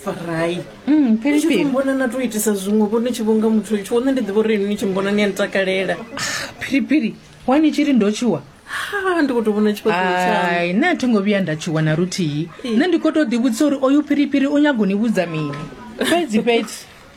farai mm, ni tshi mbona na to itisa zwiṅwe vho ni tshi vhonga muthu tsho one ndi ḓivha uri ni tshi mbona ni a ni takalela ah, phiriphiri wa ni tshi ri ndo tshiwa ha ndi kho to vhona tshifhaṱoai nṋe a thi ngo vhuya nda tshiwa na luthihi nṋe ndi kho to ḓivhudzisa uri oyu phiriphiri u nyago ni vhudza mini fhedzi fhedzi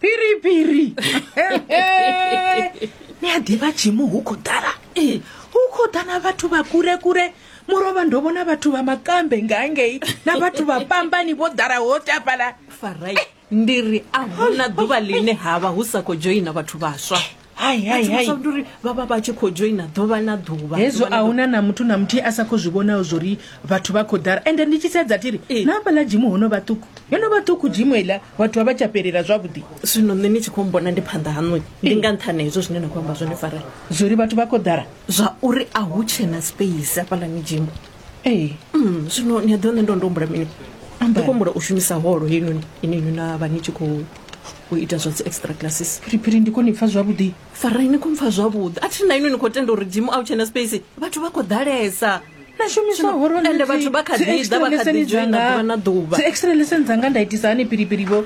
phiripiri ni a ḓivha tshimu hu khou ḓala ee hu khou ḓa na vhathu vha kule kule murovha ndo vhona vhathu vha makambe nga ngei na vhathu vha pambani vho ḓala ho tapala farai ndi ri a huna ḓuvha ḽine ha vha hu sa khou dzhoina vhathu vhaswa uri vha vha vha tshi khou dzhoina ḓuvha na ḓuvha hezwo a huna na muthu na muthihi a sa khou zwi vhonaho zwo ri vhathu vha khou ḓala ende ndi tshi sedza thiri eh. na hafhaḽa dzimu ho no vha ṱuku yo no vha ṱuku dzimu iḽa vhathu vha vha tsha fhelela zwavhuḓi zwino nṋe ni tshi khou mbona ndi phanḓa haṋoi ndi eh. nga nṱhani hezwo zwine na khou amba zwone fara zwo ri vhathu vha khou ḓala zwa uri a hu tshena space hafhaḽani dzimu ee mm, zwino ni a ḓiwa nṋe ndo ndo humbula mini ndi khou humbula u shumisa holo heinoni ine inwi na vha ni tshi khou u ita zwa dzi extra classes phiriphiri ndi khou ni pfa zwavhuḓi farai ni khou mpfa zwavhuḓi a thi na inwi ni khou tenda uri dimu a u tshena space vhathu vha khou ḓalesa na shumiswa holo ende vhathu vha kha ḓi ḓa vha kha ḓi dzhoina ḓuvha na ḓuvha dzi extra lesson dzanga nda itisa hani phiriphiri vho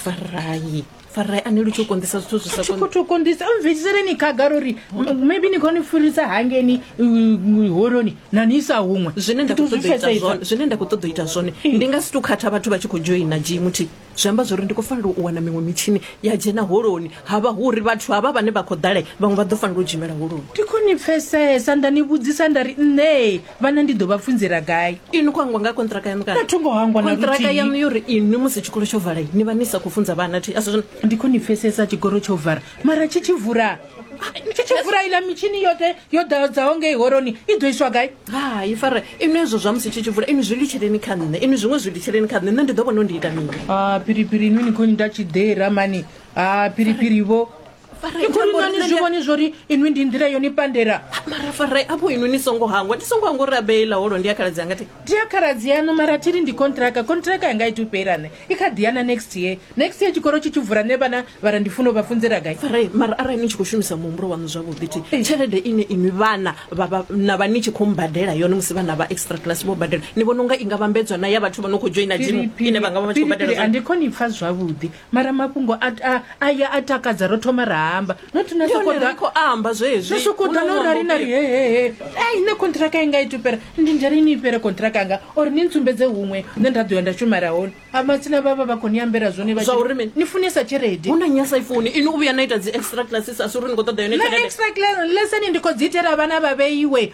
farai farai ani lu tshi u konḓisa zwithu zwi sa khou tou konḓisa mvhedziseleni khagala uri m- maybe ni khou ni furisa hangeni uh, holoni na ni isa huṅwe zwine nda Ndi khou ḓo zwi ṱoḓa u ita pfesesa. zwone zwine nda khou ṱoḓa u ita zwone ndi nga si tu khatha vhathu vha tshi khou dzhoina gmt zwi amba zwori ndi khou fanela u wana miṅwe mitshini ya dzhena holoni havha hu uri vhathu havha vhane vha khou ḓala vhaṅwe vha ḓo fanela u dzhimela holoni ndi khou ni pfesesa nda ni vhudzisa nda ri nṋe vhana ndi ḓo vha funzela gai inwi khou hangwa nga kontraka yanu kana tho ngo hangwa na kontraka yanu yo ri inwi musi tshikolo tsho vala ni vha ni sa khou funza vhana thi asi ndi khou ni pfesesa tshikolo tsho vara mara tshi tshi vula tshi tshi vula ila mitshini yoṱhe yo ḓadzaho ngei horoni i ḓo iswa gai hai fara inwi hezwo zwa musi tshi tshi vula inwi zwi litsheleni kha nṋe inwi zwiṅwe zwi litsheleni kha nṋe nṋe ndi ḓo vhona u ndi ita mini a phiriphiri inwi ni khou ni nda tshiḓera mani a phiriphiri vho ni zwi vhoni zwori inwi ndi nḓila yo ni pandela mara farai apo inwi ni songo hangwa ndi songo hangwa uri abeila holo ndi ya khaladzi anga ti ndi ya khaladzi yanu mara thiri ndi kontraka kontraka yanga iti upela ne i kha ḓiyana next year next year tshikolo tshi tshi vula ne vhana vhara ndi funo vha funzela gai farai mara arali ni tshi khou shumisa muhumbulo waṋu zwavhuḓi ti eh. tshelede ine inwi vhana na vha ni tshi khou mbadela yone musi vhana vha extra class vho badela ni vhona unga i nga vhambedzwa na ya vhathu vha no khou joina jimu ine vha nga vha vha tshi khou badela andi khoni pfa zwavhuḓi mara mafhungo a a a ya a takadza ro thoma ra amba not na Ndi hone sokoḓa ri khou amba zwezwi. no sokoḓa Hu na no ṅwambo rali na ri ufhio? hehehe ei nṋe kontraka yanga i tupera ndi ndari ni fhere kontraka yanga or ni ntsumbedze huṅwe nṋe nda ḓo ya nda shumela hone a matsina vhavha vha khou ni ambela zwone vha Zwa tshi uri ri- mini? ni funesa tshelede hu na nyasa ifuni ini u vhuya na ita dzi extra classes a si uri ni khou ṱoḓa yone na tshelede extra lesson ndi khou dzi itela vhana vha vheiwe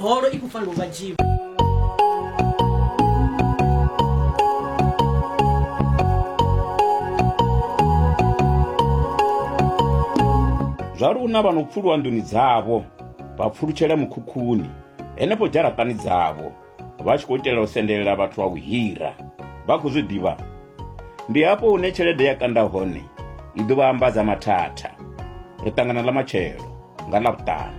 holo i khou fanela u vha dzhiwa zwa luna vha no pfuluwa nḓuni dzavho vha pfulutshela mukhukhuni henefho dzharaṱani dzavho vha tshi khou itela u sendelela vhathu vha u hira vha khou zwi ḓivha ndi hafho hune tshelede ya kanda hone i ḓo vha ambadza mathatha ri ṱangana ḽa matshelo nga ḽa vhuṱanu